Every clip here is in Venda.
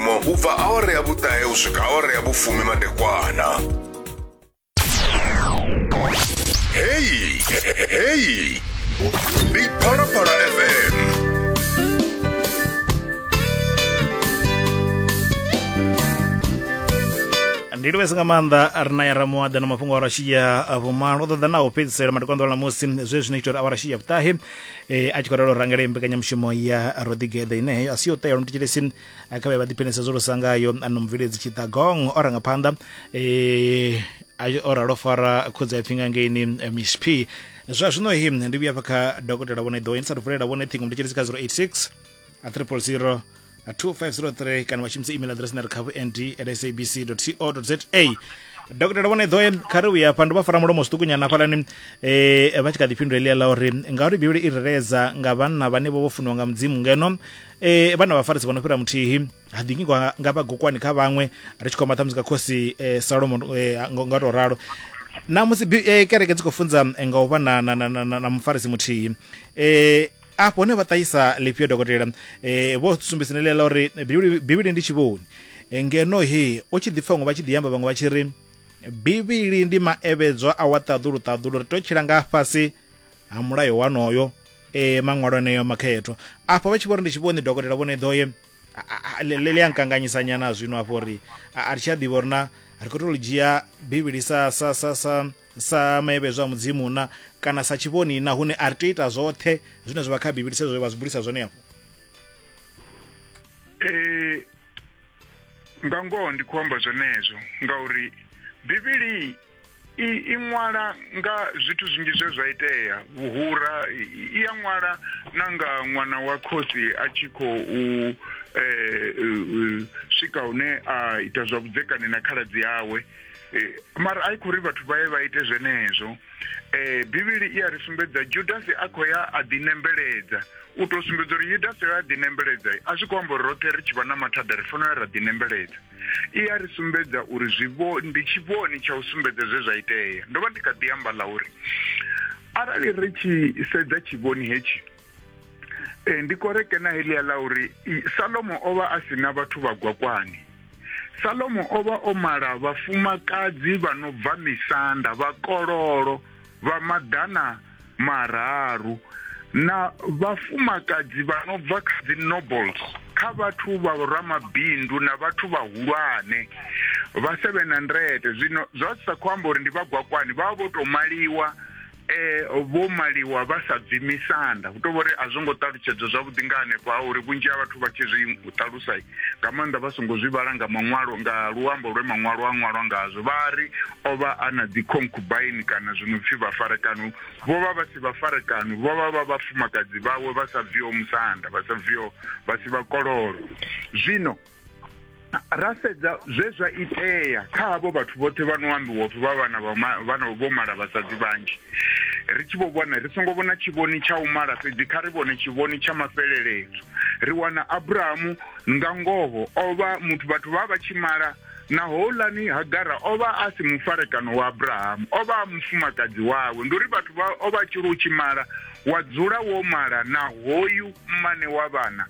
mo u bva awara ya vhuṱahe u swika awara ya vhufumi madekwana heyi heyi ndi phalaphala fm ndi livhese nga maanḓa ri na ya ramuwaḓa na mafhungo a rashiya vhumalo ṱoḓa na u fhedzisela matikwanḓo ḽa musi zwe zwino ita uri a wa rashiya vhuṱahe eh, a tshi khou ralo rangela mbekanyamushumo ya rodigede ine heyo a si yo tea lomutitshelesi a kha vhe vha ḓiphenisa zwo lusa ngayo ano mubveledzi tshiṱagong o ranga phanḓa eh, o ralo fara khudzi a pfinga ngeini eh, msp zwa zwino hi ndi vhuya fha kha dokotela vhone ḓo insa vulela vhone ṱhingo ndi tshelisi kha 086 a triple zero 2503 kana vha shumisa email address na ri khavu nd at sabc co za dokotela vhone ḓoe kha ri uya fha ndo vha fara mulomo zwiṱukunyana hafhalani eh vha tshi kha ḓi fhindula eḽia ḽa uri ngauri bivhili i reredza nga vhanna vhane vho vho funiwa nga mudzimu ngeno e, vhana vhafarisi vha no fhira muthihi ha ḓingi nga, nga vhagokwani kha vhaṅwe ri tshi khoma ṱhamusi kha khosi e, salomo e, nga nga u tou ralo na musi bi- e, kereke dzi khou funza e, nga u vha na, na, na, na, na, na mufarisi muthihi e, afho hone vha ṱahisa lifhio dokotela e, vho sumbisa neḽia ḽa uri Bivhili- bivhili ndi tshivhoni E, ngeno he u tshi ḓi pfa vhaṅwe vha tshi ḓi amba vhaṅwe vha tshi ri bivhili ndi maevhedzwa a wa ṱaḓulu ṱaḓulu ri tou tshila nga fhasi ha mulayo wanoyo e maṅwalo eneyo makhethwa afho vha tshi vhori ndi tshi vhoni dokotela vhone ḓoye ḽi a nkanganyisa nyana zwino afho uri a ri tshi a ḓivha uri na ri khou tou li dzhia bivhili sa sa sa sa sa maevhedzo a mudzimu na kana sa tshivhoni na hune a ri tea ita zwoṱhe zwine zwa vha kha bivhili sezwo vha zwi bulisa zwone afho ee nga ngoho ndi khou amba zwenezwo ngauri bivhili i, i ṅwala nga zwithu zwinzhi zwe zwa itea vhuhura i ya ṅwala na nga ṅwana wa khosi a tshi khou eh, eh, eh, swika hune a ita zwa vhudzekani na khaladzi yawe eh, mara a i khou ri vhathu vha ye vha ite zwenezwo eh, bivhili i a ri sumbedza judasi a khou ya a ḓinembeledza u tou sumbedza uri yudasi a ḓinembeledza a zwi khou amba uri roṱhe ri tshi vha na mathada ri fanela ra ḓinembeledza i a ri sumbedza uri zwivho ndi tshivhoni tsha u sumbedza zwe zwa itea ndo vha ndi kha ḓi amba ḽa uri arali ri tshi sedza tshivhoni hetshi e, ndi koreke na helia ḽa uri salomo o vha a si na vhathu vha gwakwani salomo o vha o mala vhafumakadzi vha no bva misanda vhakololo vha maḓana mararu na vhafumakadzi vha no bva kha dzi nobles kha vhathu vha ramabindu na vhathu vhahulwane vha 700 zwino zwa sa khou amba uri ndi vhagwakwani vha vho tou maliwa eh vho maliwa vha sa bvi misanda hu tovha uri a zwo ngo ṱalutshedzwa zwavhuḓi nga hanefho ha uri vhunzhi ha vhathu vha tshi zwi ṱalusa nga maanḓa vha songo zwi vhala nga maṅwalo nga luambo lwe maṅwalo a ṅwalwa ngazwo vha ri O vha a na dzikhonkubaini kana zwi no pfi vhafarekano. Vho vha vha si vhafarekano, vho vha vha vhafumakadzi vhawe vha sa bviho musanda, vha sa bviho, vha si vhakololo. Zwino, ra sedza zwe zwa itea kha havho vhathu vhoṱhe vha no ambiwa upfi vha vhana vha ma, vha no vho mala vhasadzi vhanzhi. Ri tshi vho vhona, ri songo vhona tshivhoni tsha u mala fhedzi, kha ri vhone tshivhoni tsha mafheleledzo. Ri wana Abrahamu, nga ngoho, o vha muthu vhathu vha vha vha tshi mala, na houlani hagara o vha a si mufarekano wa abrahamu o vha a mufumakadzi wawe ndi uri vhathu vha o vha tshiri u tshi mala wa dzula wo mala na hoyu mmane wa vhana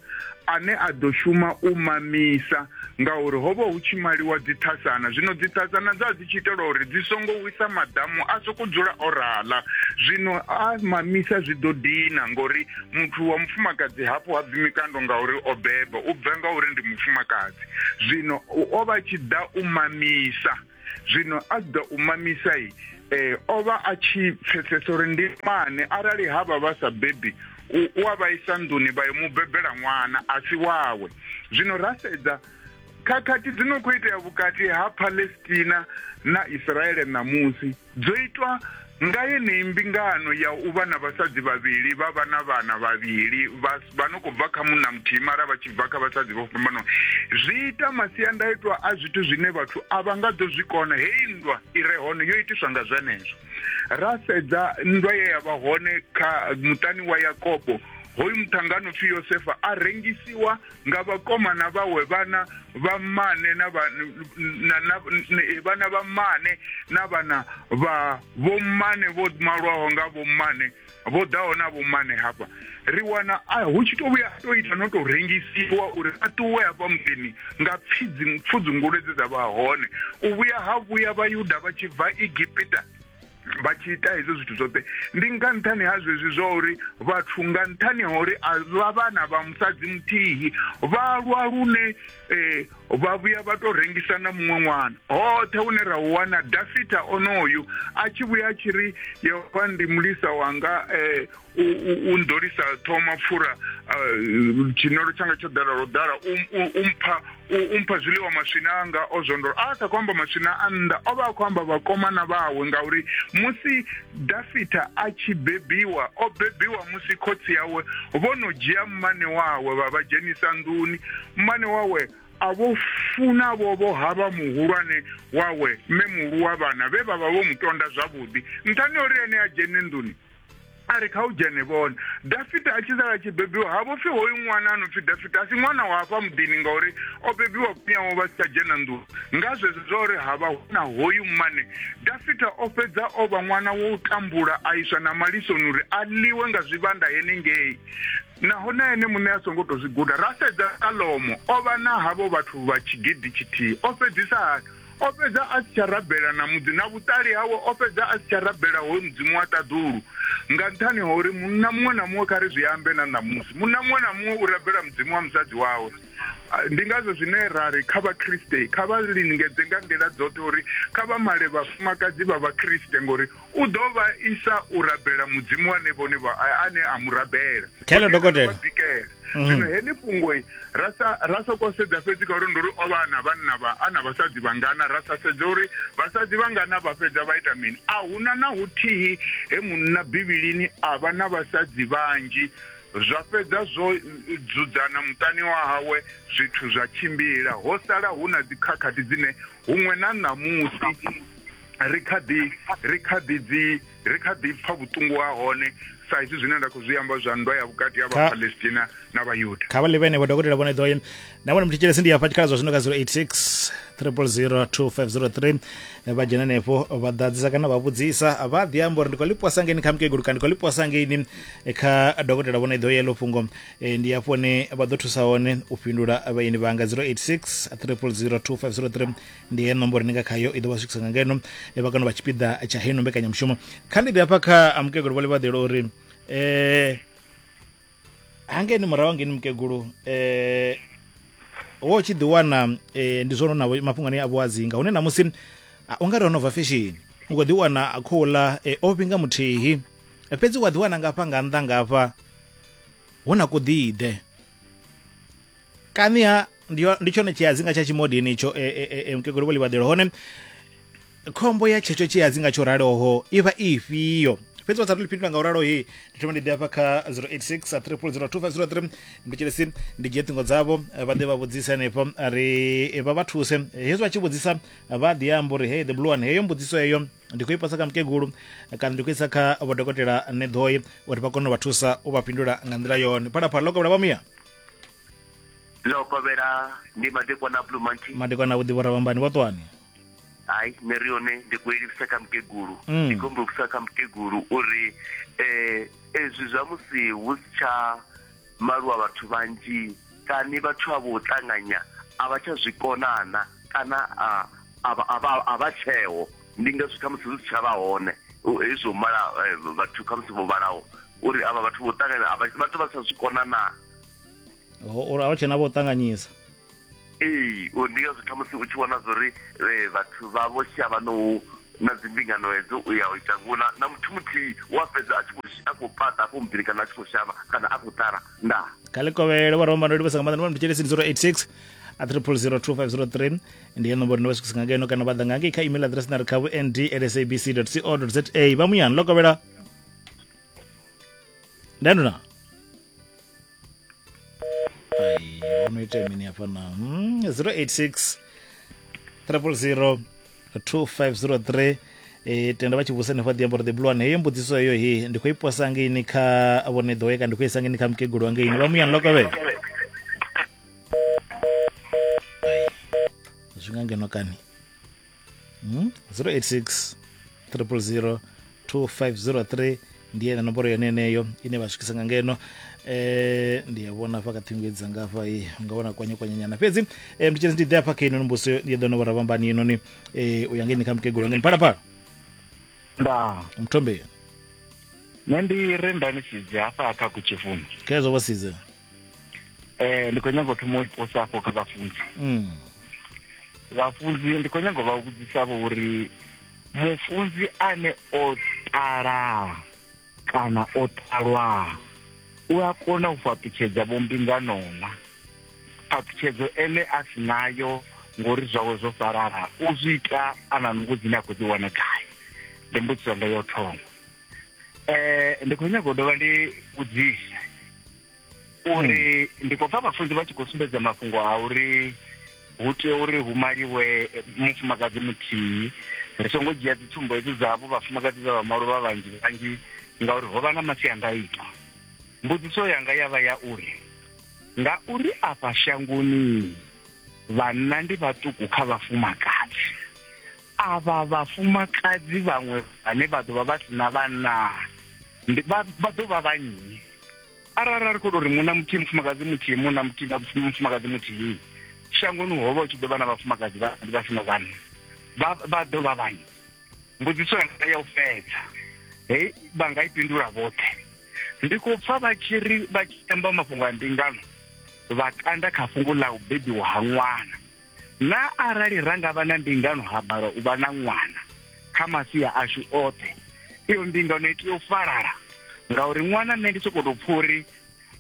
ane a ḓo shuma u mamisa ngauri ho vha hu tshi maliwa dzithasana zwino dzithasana dza dzi tshi itela uri dzi songo wisa maḓamu a soko dzula o rala zwino a mamisa zwi ḓo dina ngori muthu wa mufumakadzi hafho ha bvi mikando ngauri o beba u bva ngauri ndi mufumakadzi zwino o vha tshi ḓa u mamisa zwino a tshi ḓa u mamisa i eh o vha a tshi pfesesa uri ndi mane arali ha vha vha sa bebi u a vha isa nḓuni vha yo mu bebela ṅwana a si wawe zwino ra sedza khakhathi dzi no khou itea vhukati ha palestina na israele ṋamusi dzo itwa nga yeneyi mbingano ya u vha na vhasadzi vhavhili vha vha na vhana vhavhili vha no khou bva kha munna muthihi mara vha tshi bva kha vhasadzi vho fhambanaho zwi ita masiandaitwa a zwithu zwine vhathu a vha nga ḓo zwi kona heyi nndwa i re hone yo itiswa nga zwenezwo ra sedza nndwa ye ya vha hone kha muṱani wa yakobo hoyu muṱhangano pfhi yosefa a rengisiwa nga vhakomana vhawe vhana vha mmane na eh, vhana vha mmane na vhana vha vhommane vho malwaho nga vhommane vho ḓaho na vhommane hafha ri wana hu tshi to vhuya to ita no to rengisiwa uri a ṱuwe hafha muḓini nga pfudzi pfudzungule dze dza vha hone u vhuya ha vhuya vhayuda vha tshi bva egipita vha tshi ita hezwo zwithu zwoṱhe ndi nga nṱhani ha zwezwi zwa uri vhathu nga nṱhani ha uri a vha vhana vha musadzi muthihi vha lwa lune eh, vha vhuya vha tou rengisa na muṅwe ṅwana hoṱhe hune ra u wana dafita onoyu a tshi vhuya a tshi ri yehova ndi mulisa wanga um u ndolisa ṱhoho mapfura tshinolo tshanga tsho ḓala lwo ḓala u mpha u mpha zwiḽiwa maswina anga o zwondolo a sa khou amba maswina a nnḓa o vha a khou amba vhakomana vhawe ngauri musi dafita a tshi bebiwa o bebiwa musi khotsi yawe vho no dzhia mmane wawe vha vha dzhenisa nḓuni mmane wawe a vho funa vho vho havha muhulwane wawe mme muhulu wa vhana vhe vha vha vho mu tonda zwavhuḓi nṱhani uri ene a dzhene nḓuni a ri kha u dzhene vhone dafita a tshi sala tshi bebiwa ha vho pfi hoyu ṅwana a no pfi dafita a si ṅwana wa hafha muḓini ngauri o bebiwa kunyawo vha si tsha dzhena nḓuni nga zwezwo zwa uri ha vha hu na hoyu mmane dafita o fhedza o vha ṅwana wa u tambula a iswa na malisoni uri a ḽiwe nga zwivhanda henengei naho na ene muṋe a songo tou zwi guda ra sedza salomo o vha na havho vhathu vha tshigidi tshithihi o fhedzisa hani O fhedza a si tsha rabela na mudzi, na vhuṱali hawe o fhedza a si tsha rabela hoyu mudzimu wa ṱaḓulu, nga nṱhani ha uri munna muṅwe na muṅwe, kha ri zwi ambe na ṋamusi, munna muṅwe na muṅwe u rabela mudzimu wa musadzi wawe. Ndi ngazwo zwine ra ri kha Vhakriste kha vha lingedze nga nḓila dzoṱhe uri kha vha male vhafumakadzi vha Vhakriste, ngori U ḓo vha isa u rabela mudzimu wane vhone vha ane a mu rabela khelo dokotela bikela mhm. zwino heḽi fhungo ra sa ra sa ko sedza fhedzi ka uri nduri o vha na vhanna vha ana vhasadzi vhangana ra sa sedza uri vhasadzi vhangana vha fhedza vha ita mini a huna na huthihi he munna bivhilini a vha na vhasadzi vhanzhi zwa fhedza zwo dzudzana muṱani wa hawe zwithu zwa tshimbila ho sala hu na dzikhakhathi dzine huṅwe na ṋamusi ri kha ḓi ri kha ḓi dzi ri kha ḓi pfa vhuṱungu ha hone sa izwi zwine nda khou zwi amba zwa nndwa ya vhukati ha vhapalestina na vhayuda kha vha ḽi vhenevho dokotela vhone ḓoye na vhone muthetshelesi ndi hafha tshikhala zwa zwino ka 086 3002503 vha dzhena henefho vha ḓadzisa kana vha vhudzisa vha ḓi amba uri ndi khou ḽiposa ngeini kha mukegulu kana ndi khou ḽiposa ngeini kha dokotela vhone ḓoye ḽo fhungo e, ndi hafho ne vha ḓo thusa hone u fhindula vhaeni vhanga 086 3002503 ndi heyo nomboro ni nga khayo i ḓo vha swikisa nga ngeno vha kano vha tshipiḓa tsha heino mbekanyamushumo kha ndi ḓi hafha kha mukegulu vhole vhaḓelo uri um eh, hangeni murahu hangeni mukegulu um eh, wo tshi ḓi wana um ndi zwono na mafhungo ane a vhuadzinga hune namusi ah, u nga ri ho no bva feshini u khou ḓi wana khou ḽa um o vhinga muthihi fhedzi wa ḓi wana ngafha nga nnḓa ngafha hu na kuḓiḓe kaniha ndi yo- ndi tshone tshiadzinga tsha tshimodini itsho e, e, e, e, mukegulu vho livhaḓelo hone khombo ya tshetsho tshiadzinga tsho raloho i vha i ifhio fhedzi vha sa tou fhindula nga u ralo he ndi thoma ndi ḓe hafha kha 086 3002503 ndi tshilesi ndi dzhie ṱhingo dzavho eh, vha ḓe vha vhudzise hanefho a ri eh, vha vha thuse Eh, hezwi vha tshi vhudzisa vha ḓi amba uri hey the blue one heyo mbudziso heyo ndi khou i pasa kha mukegulu eh, kana ndi khou isa kha vhodokotela neḓoi uri vha kone u vha thusa u vha fhindula nga nḓila yone phalaphala ḽo kovhela vha muya ḽo kovhela ndi madekwana a blue monkey madekwana a vhuḓivho ravhambani vha ṱwani hayi nṋe ri yone ndi khou ilivhisa kha mukegulu mm. ndi khou mbumbisa kha mukegulu uri um ezwi zwa musi hu si tsha maluwa vhathu vhanzhi kani vhathu a vho ṱanganya a vha tsha zwi konana kana a vha tsheo ndi ngazwi khamusi zwi si tsha vha hone hezwo mala eh, vhathu khamusi vho vhalaho uri avha vhathu vho ṱanganya avha vhathu vha sa zwi kona na uri avha tshena vho ṱanganyisa ee uri ndi ngazwo khamusi u tshi vhona zwori eh, vhathu vha vho shavha no na dzimbingano hedzo u ya u ita ngona na muthu muthihi wa fhedza a tshi khou a khou pata afho mubili kana a tshi khou shavha kana a khou ṱala ndaa kha likovhele vho romba ndo livhesa nga maḓana vha mutshelesin 086 a triple zero two five zero three ndi ya nomboro ni vha swikisa nga ngeno kana vha ḓa nga ngei kha email address na ri kha vhu nd at sabc co za vha muyani lo kovhela ndani na Ai, unoita mini hapa na mm, 086 000 2503 e, tenda vachivusa nefa diamboro the blue one heyo mbudziso heyo he ndi khou iposa ngeini kha vhone ḓoweka ndi khou isa ngeini kha mukegulu wa ngeini vha muyani lokavhe zwi nga ngeno kani mm? 086 000 2503 ndi yena nomboro yone yeneyo ine vha swikisa nga ngeno eh ndi ya vhona hafha kha ṱhingo edzi dzanga hafha i nga vhona kwanye kwanye nyana fhedzi eh ndi tshedzi ndi ḓe hafha kha ino mbuso ndi ḓo no vhora vhambani inoni eh u ya ngeni kha mukegulu ngeni phala phala nda mthombe nṋe ndi re nda ni sidze hafha kha kutshifumi khezwo vha sidze Eh, ndi khou nyanga u thoma u posa afho kha vhafunzi Mm. vhafunzi ndi khou nyanga u vha vhudzisavho uri mufunzi ane o ṱala kana o ṱalwa u a kona u fhaṱutshedza vhombingano na phaṱhutshedzo ene a si nayo ngori zwawe zwo salala u zwi ita a na nungo dzine a khou dzi wana gai ndi mbudziso nga yo thoma eh ndi khou nyanga u dovha ndi vhudzise uri hmm. ndi khou pfa vhafunzi vha tshi khou sumbedza mafhungo a uri hu tea uri hu maliwe mufumakadzi muthihi ri songo dzhia dzi tsumbo hedzi dzavho vhafumakadzi vha vha malo vha vhanzhi vhanzhi ngauri ho vha na masiandaitwa mbudziso yanga ya vha ya uri nga uri afha shangoni vhanna ndi vhaṱuku kha vhafumakadzi Avha vhafumakadzi vhaṅwe vhane vha ḓo vha vha si na vhanna ndi vha vha ḓo vha vha nnyi arali a ri khou tou ri munna muthihi mufumakadzi muthihi munna muthihi na mufumakadzi muthihi shangoni ho vha hu tshi ḓo vha na vhafumakadzi vhanzhi vha si na vhanna vha vha ḓo vha vhanyi mbudziso yanga ya u fhedza hei vha nga i fhindula vhoṱhe ndi khou pfa vha tshi ri vha tshi amba mafhungo a mbingano vha kanda kha fhungo ḽa u bebiwa ha ṅwana na arali ra nga vha na mbingano ha bala u vha na ṅwana kha masia ashu oṱhe iyo mbingano i tea u falala ngauri ṅwana nṋe ndi sokou tou pfha uri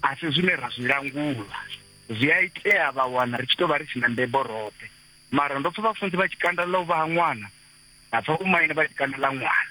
a si zwine ra zwi langula zwi a itea vha wana ri tshi tou vha ri tshi na mbebo roṱhe mara ndo pfha vhafunzi vha tshikanda ḽa u vha ha ṅwana nda pfha vhomaine vha tshikanda ḽa ṅwana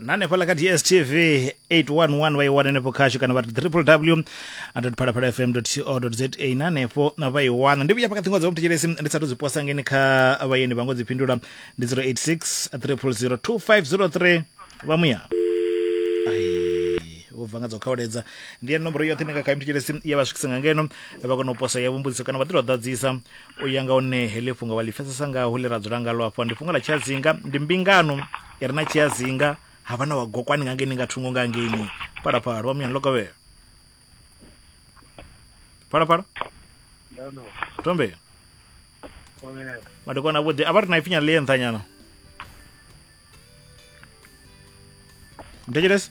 na hanefhaḽa kha dstv 811 vha i wana henefho khashu kana vha ri www phalaphala fm co za na hanefho vha i wana ndi vhuya hafha kha ṱhingo dza vomthetshelesi ndi sa to dzi posa ngeni kha vhayeni vha ngo dzi fhindula ndi 086 300 2503 vha muya vho bva nga dzo khawuledza ndi ya nomboro yoṱhe nga kha mthetshelesi ya vha swikisa nga ngeno vha kona u posa ya vhumbudziso kana vha ḓi to ḓadzisa u ya nga hone heḽi fhungo vha ḽi pfesesa ngaho ḽi ra dzula ngalo afho ndi fhungo ḽa tshazinga ndi mbingano i re na tshiazinga ha vha na wa gokwani nga ngeni nga thungo nga ngeni phalaphala wa muyani lokovhela phalaphala tombela madekwana avhuḓi a vha ri na ipfinyana ḽi ye nṱhanyana mthetshelesi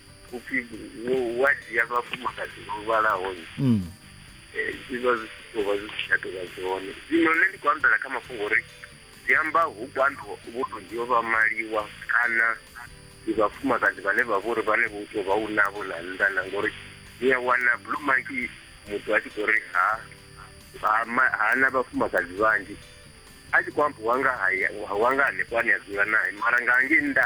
upfi wo wa dzhia vhafumakadzi vho vhalaho mm. eh, zwi vha zwi tshi tou vha zwi si tsha tou vha zwone zwino nṋe ndi khou ambela kha mafhungo uri zwi amba hu kwando vho to dzhio vha maliwa kana ndi vhafumakadzi vhane vha vhori vhane vho tou vha u navho na nnḓa na ngori ni a wana blue monkey muthu a tshi khou ri ha ha na vhafumakadzi vhanzhi a tshi khou amba wanga haya wanga hanefho ane a dzula naye mara nga ngei nnḓa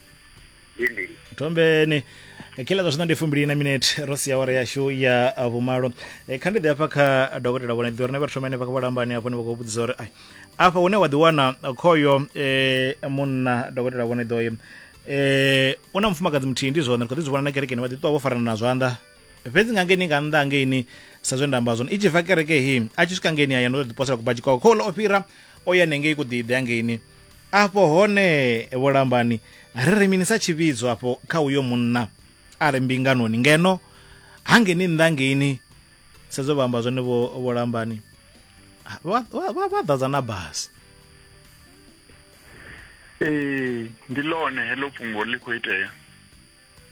ndi mbili thombeni kila zwa zwino ndi fumbili na minete ro sia awara yashu ya ah, vhumalo Eh, kha ndi ḓi hafha kha dokotela vhone ḓi uri na vha thoma henefha kha vhalambani hafho ni vha khou vhudzisa uri ai afha hune wa ḓiwana khoyo eh, munna dokotela vhone ḓoyo eh, u na mufumakadzi muthihi ndi zwone ri khou ḓi zwi vhona na kerekeni vha ḓi ṱuwa vho farana na zwanḓa fhedzi nga ngeni nga nnḓa hangeini sa zwe nda amba zwone i tshi bva kereke hi a tshi swika ngeni haya ndo ḓi posela kubadzhi kwawe khouḽa o fhira o ya nengei kuḓiḓe hangeini afho hone vhulambani ri ri mini sa tshivhidzo afho kha uyo munna a re mbinganoni ngeno hangeni nnḓa ngeini sedzo vha amba zwone vhulambani vha ḓadza na basi ee ndi ḽone heḽo fhungo ḽi khou itea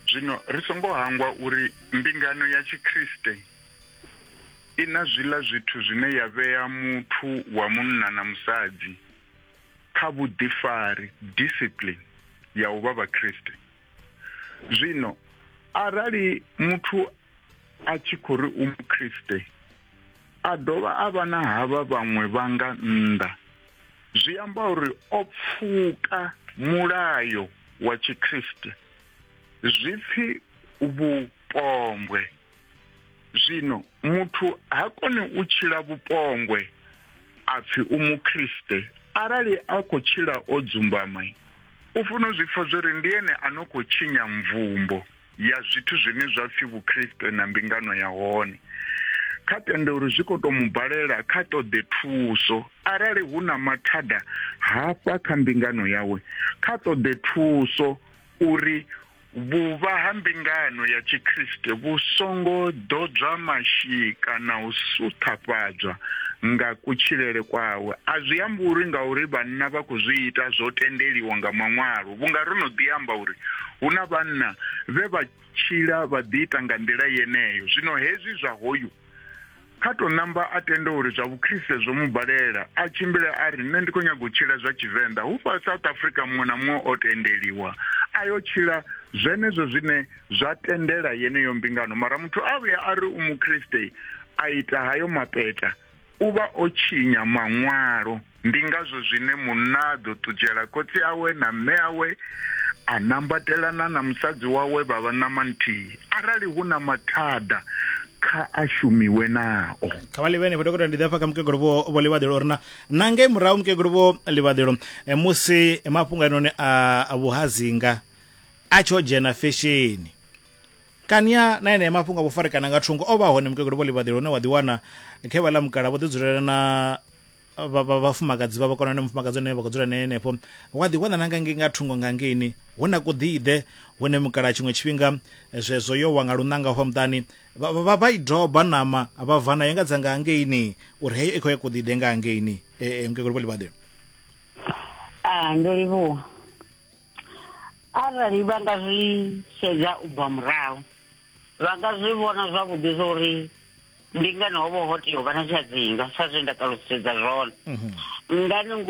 zwino ri songo hangwa uri mbingano ya tshikriste i na zwiḽa zwithu zwine ya vhea muthu wa munna na musadzi kha vhuḓifari, discipline, ya u vha Vhakriste. Zwino, arali muthu a tshi khou ri u Mukriste, a dovha a vha na havha vhaṅwe vha nga nnḓa, zwi amba uri o pfuka mulayo wa Tshikriste, zwipfi vhupombwe. Zwino muthu ha koni u tshila vhupongwe a pfi u Mukriste arali a khou tshila o dzumbama. U funa u zwi pfa zwo ri ndi ene a no khou tshinya mvumbo ya zwithu zwine zwa pfi Vhukriste na mbingano ya hone. Kha tende uri zwi khou tou mu balela, kha ṱoḓe thuso. Arali hu na mathada hafha kha mbingano yawe, kha ṱoḓe thuso uri. Vhuvha ha mbingano ya Tshikriste vhu songo ḓodzwa mashika na u suṱhafhadzwa nga kutshilele kwawe a zwi ambi uri ngauri vhanna vha khou zwi ita zwo tendeliwa nga Maṅwalo, vhunga ro no ḓi amba uri hu na vhanna vhe vha tshila vha ḓiita nga nḓila yeneyo. Zwino hezwi zwa hoyu. Kha tou ṋamba a tende uri zwa vhukriste zwo mu balela, a tshimbile a ri nṋe ndi khou nyaga u tshila zwa Tshivenḓa. Hufha South Africa muṅwe na muṅwe o tendeliwa a yo tshila zwenezwo zwine zwa tendela yeneyo mbingano. Mara muthu a vhuya a ri u mukriste a ita hayo mapeta, u vha o tshinya Maṅwalo. Ndi ngazwo zwine munna a ḓo ṱutshela khotsi awe na mme awe, a nambatelana na musadzi wawe vha vha ṋama nthihi. Arali hu na mathada, kha a shumiwe nao. kha vha livhene vho dokotela ndi ḓa fha kha mukegulu vho vho livhaḓelo uri na na ngei murahu mukegulu vho livhaḓelo eh, musi mafhungo anoni a a vhuhazinga a tsho dzhena fesheni kania na enea mafhungo a vhufarekana nga thungo o vha hone mukegulu vho livhaḓelo une wa ḓiwana khe vha ḽa mukala vho ḓidzulela na vhafumakadzi vha vha kona na mufumakadzi ane vha khou dzula naye henefho wa ḓi wana na nga ngei nga thungo nga ngeini hu na kuḓiḓe hune mukala tshiṅwe tshifhinga zwezwo yo wa nga lunanga hwa muṱani vha vha i doba nama vha va nayo nga dza nga ngeini uri heyo i khou ya kuḓiḓe nga ngeini e, e, mukegulu vho ḽivhaḓe a ndo livhuwa arali vha nga zwi sedza u bva murahu vha nga zwi vhona zwavhuḓi zwa uri ndi ngani ho vha ho tea u vha na tshiadzinga sa zwe nda ṱalusedza zwone mhm. ngani ngo